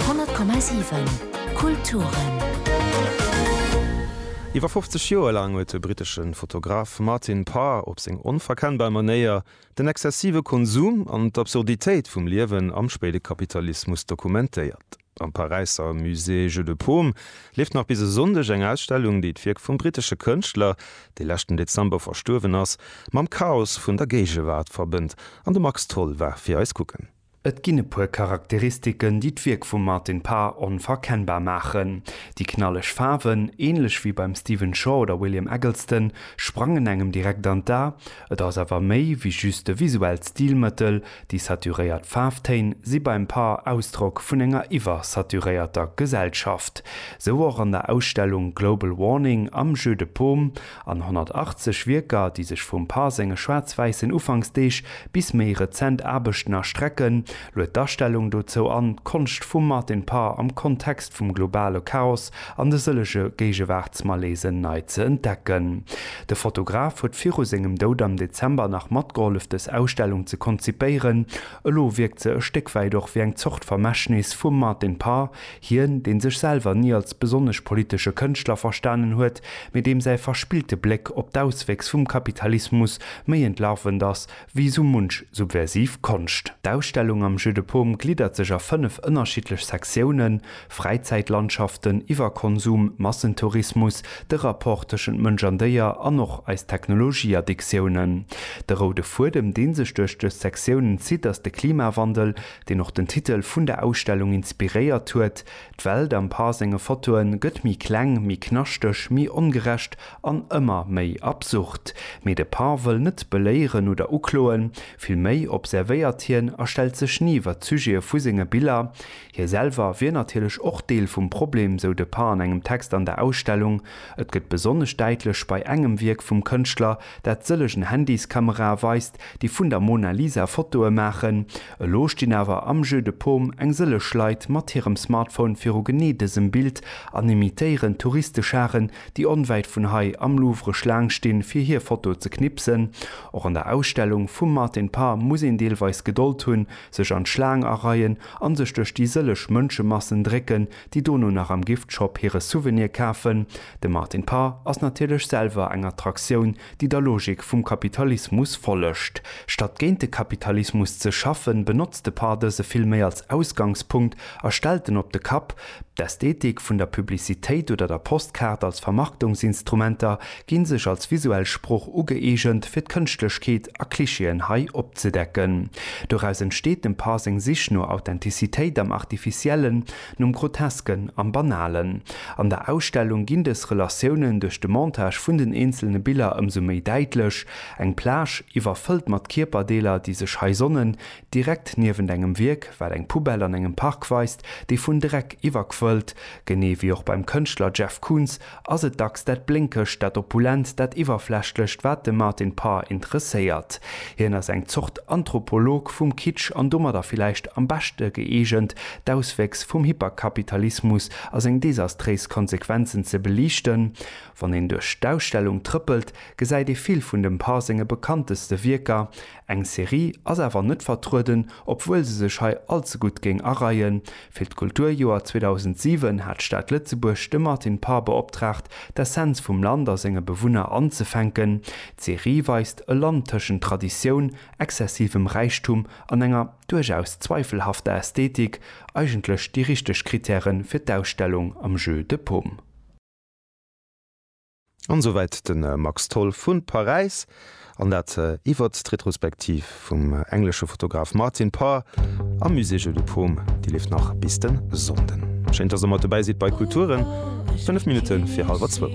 100,7 Kulturen. Iwwer 50 Joer laang huet de brittesche Fotograf Martin Parr op seng onverkennbar Manéier den exzessive Konsum an d'Absurditéit vum Liewen am spéide Kapitalismus dokumentéiert. Am Paräisser Musée Jeu de Paume leeft nach bis e Sonndeg eng Ausstellung, déi d'Wierk vum brittesche Kënschtler, dee leschten Dezember verstuerwen ass, mam Chaos vun der Géigewaart verbënnt. An de Max Tholl war fir eis kucken. Et ginn e puer Charakteristiken, déi d'Wierk vum Martin Parr onverkennbar maachen. Déi knalleg Faarwen, änlech wéi beim Stephen Shaw oder William Eggleston, sprangen engem direkt an d'A. Et ass awer méi wéi just e visuellt Stilmëttel, déi saturéiert Faarftéin si beim Parr Ausdrock vun enger iwwersaturéierter Gesellschaft. Sou och an der Ausstellung Global Warning am Jeu de Paume, An 180 Wierker, déi sech vum Parr senge schwaarz-wäissen Ufanksdeeg bis méi rezent Aarbechten erstrecken, luet d'Astellung dozou an, d'Konscht vum Martin Parr am Kontext vum globale Chaos an de sëllege Géigewaartsmalaisen nei ze entdecken. De Fotograf huet viru sengem Doud am Dezember nach matgehollef dës Ausstellung ze konzipéieren. Elo wierkt se e Stéck wäit och wéi eng Zort Vermächtnis vum Martin Parr, Hien, dee sech selwer ni als besonnesch politesche Kënschtler verstanen huet, mee deem säi verspillte Bléck op d'Auswéchs vum Kapitalismus méi entlarvend ass wéi esou munch subversiv Konscht. D'Ausstellung am Jeu de Paume gliddert sech a fënnef ënnerschiddlech Sektiounen, Fräizäitlandschaften, Iwwerkonsum, Massentourismus, de Rapport tëschent Mënsch an Déier an och eis Technologieaddiktiounen. De roude Fuedem, dee sech duerch dës Sektiounen zitt, ass de Klimawandel, deen och den Titel vun der Ausstellung inspiréiert huet, d'Welt am Par senge Fotoe gëtt méi kleng, méi knaschteg, méi ongerecht an ëmmer méi absurd. Mee de Par wëll net beléieren oder ukloen, vill méi observéiert hien a stellt sech ni iwwer d'Sujete vu senge Biller. Hie selwer wier natierlech och Deel vum Problem, sou de Par an engem Text an der Ausstellung. Et gëtt besonnesch däitlech bei engem Wierk vum Kënschtler, Dat sëllegen Handyskamerae weist, déi vun der Mona Lisa Fotoe maachen. Elo stinn awer am Jeu de Paume eng sëllech Leit mat hirem Smartphone viru genee dësem Bild an imitéieren Touristescharen, déi onwäit vun hei am Louvre Schlaang stinn, fir hir Foto ze knipsen. Och an der Ausstellung vum Martin Parr muss een deelweis Gedold hunn, sech an d'Schlaang areien an sech duerch déi sëllech Mënschemassen drécken, déi dono nach am Giftshop hire Souvenir kafen, de Martin Parr ass natierlech selwer eng Attraktioun, déi der Logik vum Kapitalismus follegt. Statt géint de Kapitalismus ze schaffen, benotzt de Parr dëse vill méi als Ausgangspunkt a stellt en op de Kapp. D'Ästhetik vun der Publicitéit oder der Postkaart als Vermarktungsinstrumenter ginn sech als visuell Sproch ugëeegent fir d'Kënschtlechkeet a Klischeeën hei opzedecken. Doraus entsteet dem Parr seng Sich no Authentizitéit am Artificiellen, nom Grotesken, am Banalen. An der Ausstellung ginn dës Relatiounen duerch de Montage vun den eenzelne Biller ëmsou méi däitlech, eng Plage, iwwerfëllt mat Kierperdeeler, déi sech hei sonnen, direkt niewent engem Wierk, wat eng Poubelle an engem Park weist, déi vun Dreck iwwerquëllt, genee wéi och beim Kënschtler Jeff Koons, Ass et dacks dat Blénkegt, dat Opulent, dat Iwwerflächlecht, wat de Martin Parr interesséiert? Hien ass eng Zort Anthropolog vum Kitsch an domadder villäicht am beschte gëeegent, d'Auswéchs vum Hyperkapitalismus a seng desastréis Konsequenzen ze beliichten. Wann een duerch d'Ausstellung trëppelt, gesäit ee vill vun dem Parr senge bekannteste Wierker, Eng Serie ass awer net vertrueden, obwuel se sech hei allze gutt géing areien. Fir d'Kulturjoer 2007 hat d'Stad Lëtzebuerg de Martin Parr beoptraagt, d'Essenz vum Land a senge Bewunner anzefänken. D'Serie weist e Land tëschent Traditioun, exzessivem Räichtum an enger, duerchaus zweifelhafter, Ästhetik, eigentlech déi richteg Krittäre fir d'Ausstellung am Jeu de paume. An souwäit de Max Tholl vu Paräis an dat iwwert d'Retrospektiv vum englesche Fotograf Martin Parr am Musée Jeu de Paume. Déi leeft nach bis de Sonnden. Schéin, dass der mat dobäi sidd bei Kulturen, 5 Minutte fir hallwer zwou.